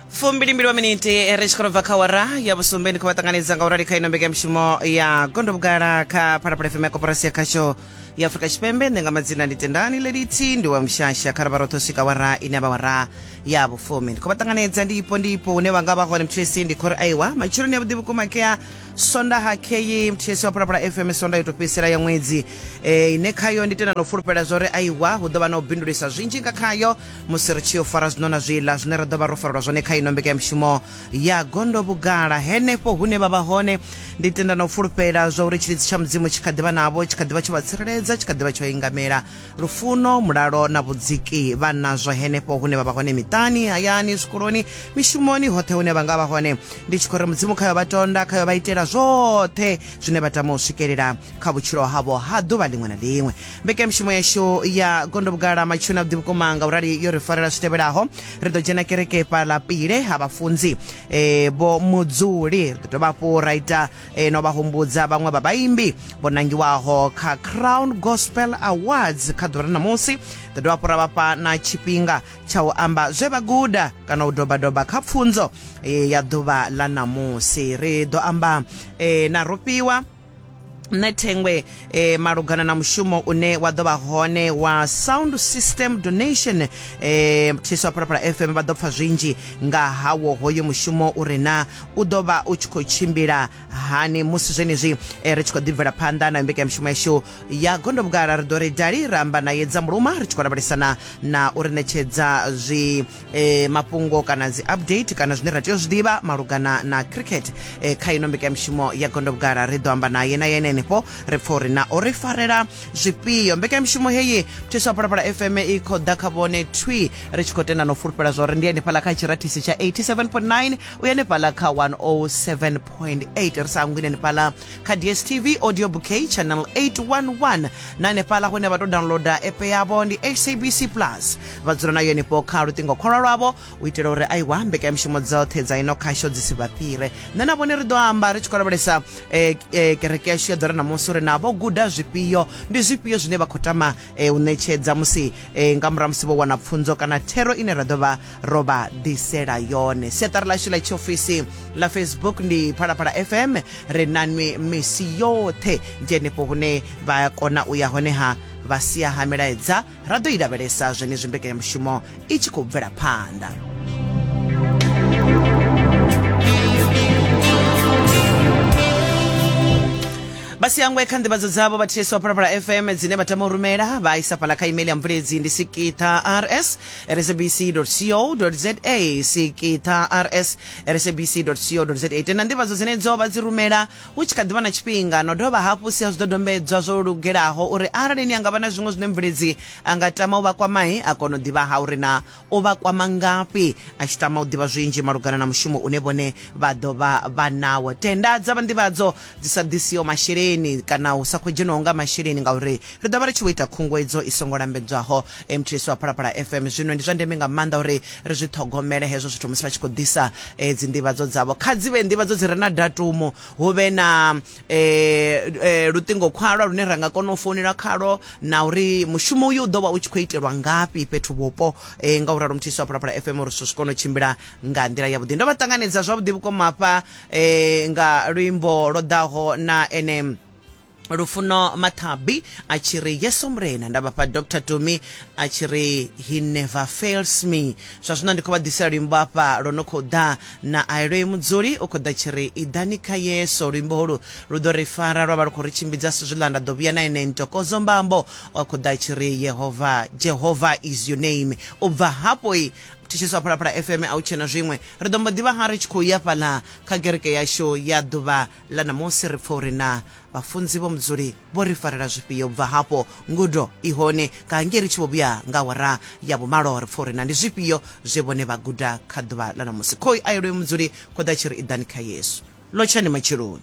fumbilimbili wa miniti ri tshi khou bva kha wara ya vhusumbe ni khou vha ṱanganedza nga u rali kha ino mbekanyamushumo ya gondo vhugala kha phalaphala fm ya koporasi ya khasho ya afurika tshipembe nṋe nga madzina ndi tendani leliti ndi wa mushasha kha ravha roṱhe u swika wara ine vha wara ya vhufumi ndi khou vha ṱanganedza ndi ipo ndi ipo hune vha nga vha hone muthu esi ndi khori aiwa matshiloni ya vhuḓi vhukuma kea sonda ha kheyi muthu esi wa phalaphala fm sonda yo tou fhedzisela ya ṅwedzi eh, ine khayo ndi tenda na u fulufhela zwa uri aiwa hu ḓo vha na u bindulisa zwinzhi nga khayo musi ri tshi yo fara zwino na zwiḽa zwine ra ḓo vha ro farelwa zwone kha ino mbekanyamushumo ya gondo vhugala henefho hune vha vha hone ndi tenda na u fulufhela zwa uri tshilidzi tsha mudzimu tshi kha ḓivha navho tshi kha ḓivha tsho vha tsireledza tshi kha ḓivha tsho ingamela lufuno mulalo na vhudziki vha nazwo henefho hune vha vha hone miṱani hayani zwikoloni mishumoni hoṱhe hune vha nga vha hone ndi tshi khou ri mudzimu khayo vha tonda khayo vha itela zwoṱhe zwine vha tama u swikelela kha vhutshilo havho ha ḓuvha ḽiṅwe na ḽiṅwe mbekanyamushumo yashu ya gondo vhugala matshuni a vhuḓi vhukuma nga urali yo ri farela zwi tevhelaho ri ḓo dzhena kereke fhaḽa pile ha vhafunzi eh, vho mudzuli ri ḓo dovha hafhu ra ita eh, no vha humbudza vhaṅwe vha vhaimbi vho nangiwaho kha crown gospel awards kha ḓuvha ra ṋamusi ḓo dovha hafhu ra vhafha na tshifhinga tsha u amba zwe vha guda kana u dobadoba kha pfunzo eh, ya ḓuvha ḽa ṋamusi ri ḓo amba eh, na rofhiwa nṋe thengwe eh, malugana na mushumo une wa ḓo vha hone wa sound system donation eh, thiswa phalaphala fm vha ḓo pfa zwinzhi nga hawo hoyo mushumo u re na u ḓo vha u tshi khou tshimbila hani musi zwenezwi eh, ri tshi khou ḓibvela phanḓa na mbekanyamushumo yashu ya gondobugala ri ḓo ri dali ra amba naye dza muluma ri tshi khou lavhelesana na u ri ṋetshedza zwi e, mafhungo kana dzi update kana zwine ra tea u zwi ḓivha malugana na cricket e, kha ino mbekanyamushumo ya gondo vhugala ri ḓo amba naye na yene henefho ri pfa uri na o ri farela zwifhio mbekanyamushumo heyi mthisi wa phalaphala fm i khou ḓa kha vhone twi ri tshi khou tenda na u fulufhela zwa uri ndi henefhala kha tshirathisi tsha 87.9 u henefhala kha 107.8 ri sa hangwini henefhala kha dstv audio bouquet channel 811 na henefhala hune vha tou downloada app yavho ndi sabc plus vha dzula nayo henefho kha luṱingo kholwa lwavho u itela uri a iwa mbekanyamushumo dzoṱhe dza ino khasho dzi si vha fhire nṋe na vhone ri ḓo amba ri tshi khou lavhelesa eh, eh, kereke yashu ya ḓore namusi uri na vho guda zwifhio ndi zwifhio zwine vha khou tama eh, u ṋetshedza musi nga murahu musi vho wana pfunzo kana thero ine ra ḓo vha ro vha ḓisela yone siaṱari lashu ḽa tshiofisi ḽa facebook ndi phalaphala fm ri nanwi misi yoṱhe ndi henefho hune vha kona u ya honeha vha sia ha milaedza ra ḓo i lavhelesa zwenezwi mbekanyamushumo i tshi khou bvela phanḓa vhasiyangwe kha nḓivhadzo dzavho vha ths wa phalaphala fm dzine vha tama u rumela vha isa fhala kha email ya mbuledzi ndi sikitha rs rsbc co za sikitha rs rsbc co za tena nḓivhadzo dzenedzo vha dzi rumela Hu tshi kha ḓi vha na tshifhinga, no dovha hafhu sia zwidodombedzwa zwo lugelaho uri arali ni anga vha na zwiṅwe zwine mvuledzi a nga tama u vha kwamai, a kona u ḓivha ha uri naa o vha kwama ngafhi, a tshi tama u ḓivha zwinzhi malugana na mushumo une vhone vha ḓo vha vha nawo. Tenda dza vha nḓivhadzo dzi sa ḓisiho masheleni kana hu sa khou dzhenwaho nga masheleni ngauri ri ḓo vha ri tshi vho ita khunguwedzo i songo lambedzwaho. Mths wa Phalaphala FM. Zwino ndi zwa ndeme nga maanḓa uri ri zwi ṱhogomele hezwo zwithu musi vha tshi khou ḓisa eh, dzi nḓivhadzo dzavho. Kha dzi vhe nḓivhadzo dzi re na datumu, hu vhe na eh, eh, luṱingo khwalwa lune ra nga kona u founela khalwo na uri mushumo uyu u ḓo vha u tshi khou itelwa ngafhi fhethu vhupo eh, nga u ralo Mths wa Phalaphala FM uri zwithu zwi kone u tshimbila nga nḓila yavhuḓi. Ndo vha ṱanganedza zwavhuḓi vhukuma hafha eh, nga luimbo lwo ḓaho na ene lufuno mathabi a tshi ri yeso murena nda vhafha dr tumi a tshi ri he never fails me zwa zwino ndi khou vha ḓisela luimbo afha lwo no khou ḓa na aeloi mudzuli u khou ḓa tshi ri iḓani kha yeso luimbo holu lu ḓo ri fara lwa vha lu khou ri tshimbidza si zwiḽa nda ḓo vhuya na ene ntokodzo mbambo wa khou ḓa tshi ri yehova jehova is your name u bva hafho i thetsheso a phalaphala fm a u tshena zwiṅwe ri ḓo mbo ḓivha ha ri tshi khou ya fhaḽa kha gereke yashu ya ḓuvha Ḽa ṋamusi ri pfa uri naa vhafunzi vho Mudzuli vho ri farela zwifhio. U bva hafho ngudo i hone nga hangei ri tshi vho vhuya nga awara ya vhumalo. Ri pfa uri naa ndi zwifhio zwe vhone vha guda kha ḓuvha ḽa ṋamusi. Khoi a yo lwe Mudzuli, khoḓa tshi ri, Iḓani kha Yesu. Lotshani matsheloni.